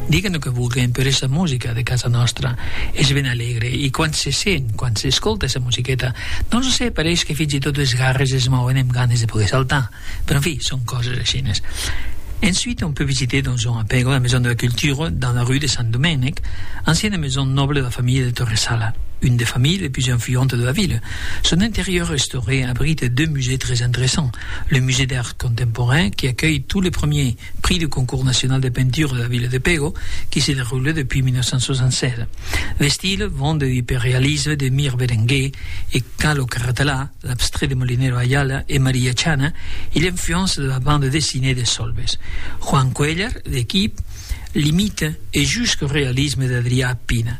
Diguen lo que vulguen, però es la musica de casa nòstra. Es ben alegre e quand se sent, quand s'escolta esa musiqueta, non lo sé, pareish que fins e tot es garres es mòuen emb ganes de poder saltar. Però en fi, son coses aishines. Ensuite on peut visiter dans un apego la maison de la culture dans la rue de Sant Domènec, anciana maison noble de la familha de Torresala, une des familhes les plus influentes de la ville. Son interieur restauré abrite deux musées très interessants, Le Musée d'Art Contemporain qui acuelh tot le premier Prix du Concours National de Peinture de la Ville de Pego qui se deroule depuis 1967. D'estil vent de hyperrealisme de Mir Berenguer e Calo Carratelà, l'abstrait de Molinero Ayala e Maria Chana e l'influence de la bande dessinée de Solves. Juan Cuéllar, l'equip, l'imite e jusqu'au realisme d'Adrià Pina.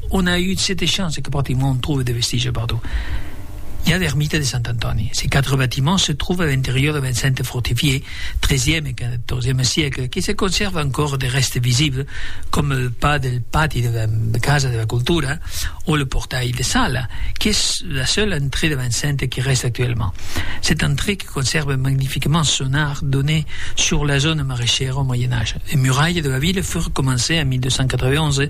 On a eu sete champs e que practicament on tròve de vestigi partout. I a l'ermita de Sant Antòni. Se quatre batiments se tròve a l'interior de l'enceinte fortifiée, tresiem e quatorzieme siècle, que se conserva ancòr de rèstes visibles, coma le pas del pati de la casa de la cultura o le portail de sala, qu'es la seule entrée de l'enceinte que rèste actuellement. Cette entrée que conserve magnifiquement son arc donnait sur la zòna maraishèra au Moyen Age. Les murailles de la ville furent comencées en 1291,